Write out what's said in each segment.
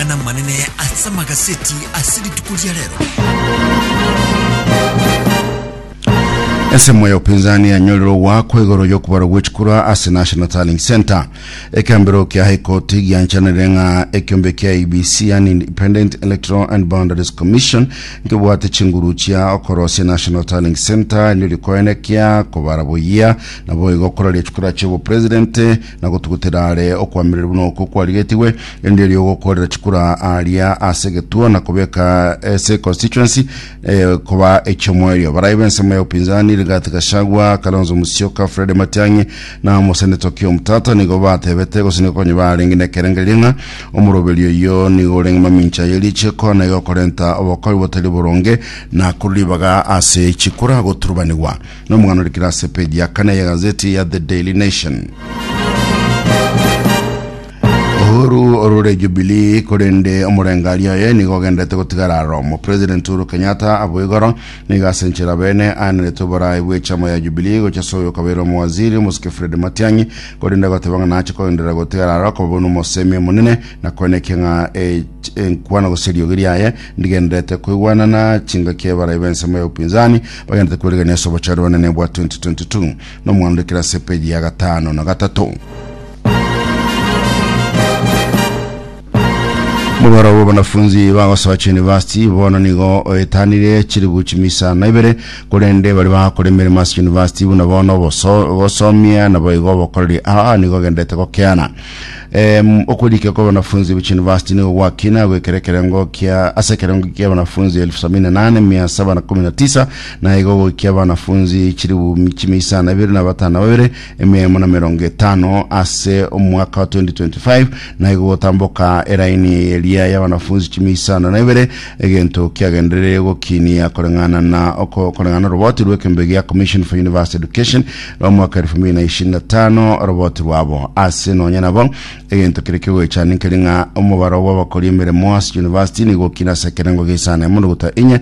amang'ana amanene ase amagaseti ase rituko ria rero. Ensemo ya upinzani yanyorire ogwakwa igoro y'okubarwa gw'echikura ase National Tallying Centre. Ekembero kia High Court gianchanire ng'a ekiombe kia IEBC yani Independent Electoral and Boundaries Commission nkebwate chinguru chia okorosia National Tallying Centre nirikoene kia kobara boyia nabo igo koraria chikura chia obopresident Na gotugutera are okoamererwa buna oko kwarigetigwe, erinde erio ogokoorera chikura aaria ase egetuo na kobeka ase constituency eh, koba eki'omoerio. Barai b'ensemo ya upinzani, Rigathi Gachagua, Kalonzo Musyoka, Fred Matiang'i na omoseneto Okiya Omtata nigo batebete gose nigo konya barenge nekerengererio ng'a omoroberio oyio nigo orenge mamincha ye richiiko na igo okorenta obokori botari boronge na korwa ribaga ase chikura goturubanigwa. Nomong'ana orikire ase peji ya kane y'egazeti ya The Daily Nation. Uhuru orure Jubilee korende omorengari oye nigo ogendete gotigara aromo. President Uhuru Kenyatta abo igoro nigo ase enchera bene aenerete oboraai bw'echama ya Jubilee gocha ase oyo okabeire omowaziri omosike Fred Matiang'i korende agoteba ng'a nache kogenderera gotigara aro koba buna omosemi omonene na koenekia ng'a e- enkwano gose eriogi riaye Ndigendererete koigwana na chingaki y'abarai b'ensemo ya upinzani bagendererete korigereria ase obochare bwanene bwa 2022. Nomwando ndikire ase epeji ya gatano na gatato. Mobaro bwa banafunzi bagosoa chiyunivasiti bono nigo oetanire chiribu chimisana ibere korende bari bagakora emeremo ase yunivasiti buna bono gosomia nabo igo bokoreri aa nigo ogenderete gokeana Em, okorike kwa wanafunzi bwe chunivasiti nigo gwakina goikera ekerengo kia ase ekerengo kia wanafunzi elfu sabini na nane mia saba na kumi na tisa na igo goikia wanafunzi chiribumi chimia isano na ibere na batano na babere emia emo na mirongo etano ase omwaka wa 2025 na igo gotamboka eraini eye eria ya wanafunzi chimia isano na ibere egento kiagendereire gokinia koreng'ana na oko- koreng'ana na oroboti rw'ekembe gia commission for university education Nomwaka elfu mbili na ishirini na tano oroboti rwabo ase nonya nabo egento kere kigoechani nkeri ng'a omobaro bw'abakori emeremo ase university nigo okina ase ekerengo geisano emondo gotwa enye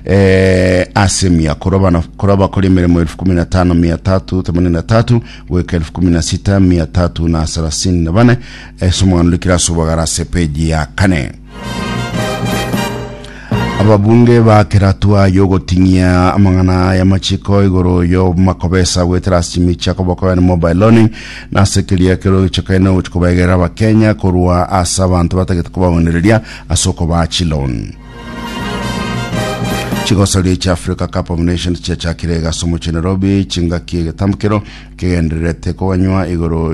eh, ase mia korwa bana korwa abakori emeremo elfu kumi na tano mia tatu themanini na tatu goika elfu kumi na sita mia tatu na sarasini na bane ase omwano rikira ase obogara ase peji ya kane Ababunge bakera hatua y'ogoting'ia amang'ana aya machiko igoro y'omakobesa gwetera ase chimichi akoboko yani mobile loaning na ase keria kero gichokaine gochi kobegerera abakenya korwa ase abanto batagete kobaonereria ase okobaa chiloan chigosaria echa africa cup of nations chiachakire egasi omochie nairobi chingaki egetambukero kegendererete koganywa igoro